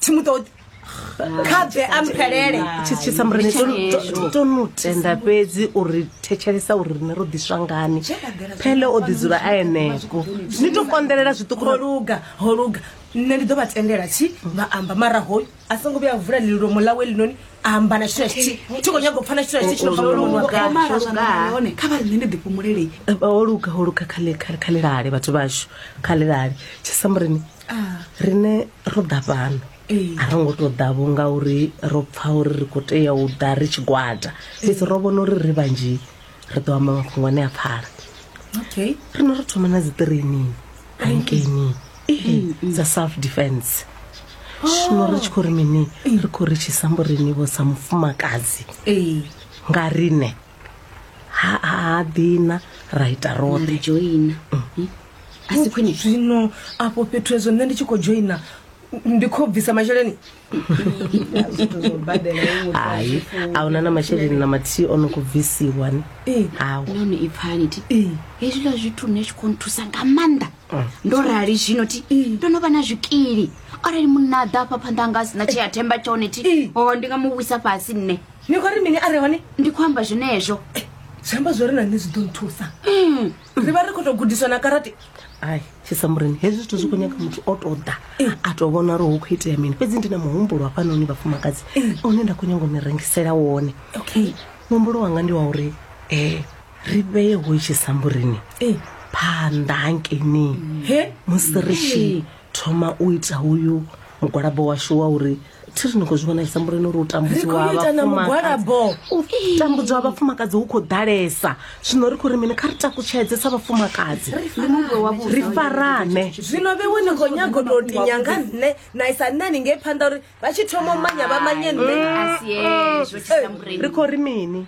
thi mu ṱoḓi kha bve a mphelele thitshisa murene to no tenda fhedzi uri thetshelesa uri rine ro ḓiswa ngani phele o ḓi dzula a eneko ni to konḓelela zwiṱuku holuga holuga nṋe ndi ḓo vha tendela tshi vha amba mara hoyu a songo vhuya vula lilomo ḽawe linoni amba na tshithu tshi thi kho nyaga u pfana tshithu tshi tshino hone kha vha nṋe ndi ḓi fhumulele holuga holuga kha kha kha lilale vhathu vhashu kha lilale tshisa murene ah. rine ro ḓa fhano a ro ngo tou ḓa vho ngauri ro pfa uri ri khou tea u ḓa ri tshigwada fhedzi ro vhona uri ri vhanzhi ri ḓo amba mafhungo ane a pfala okay rino ro thoma na dzi training bankeni dza self defense zwino ri tshi khou ri mini ri khou ri tshisambo rini vho sa mufumakadzi nga rine ha ha dina ra ita ra roṱhe joina Hmm? a si khwine zwino afho fhethu hezwo nṋe ndi tshi khou joina ndi khou bvisa masheleni zwithu zwo badela iwe muthu a hai zwi funi. a huna na masheleni na mathihi o no khou bvisiwa ni Ee. hawu nahone i pfani ti Ee. hezwiḽa zwithu nṋe zwi khou nthusa nga maanḓa ndo rali zwino ti ndo no vha na zwikili arali munna a ḓa afha phanḓa anga a sina tshea themba tshone ti o ndi nga mu wisa fhasi nṋe ni khou ri mini a re hone ndi khou amba zwenezwo eh, zwi amba zwo ri na nṋe zwi ḓo nthusa hmm. ri vha ri khou tou gudiswa na karate ai tshisamureni hezwi zwithu zwi khou nyaga muthu o tou ḓa eh. a tou vhona uri hu khou itea mini fhedzi ndi na muhumbulo hafhanoni vhafumakadzi eh. une nda khou nyaga u ni rengisela wone okay muhumbulo wanga ndi wa uri um ri vheye ho tshisamburini phanḓa hankeini musi ri tshi thoma u ita uyu mugwalabo washu wa uri thi ri ni khou zwi vhona tshisambule no ri u tambudziwa ha vhafumakadzi tambudziwa ha vhafumakadzi hu khou ḓalesa zwino ri khou ri mini kha ri takutshedze sa vhafumakadzi ri farane zwino vhewe ni khou nyago tou tinya nga nṋe na isa nṋe ni ngei phanḓa uri vha tshi thoma u manya vha manye nṋe ri khou ri mini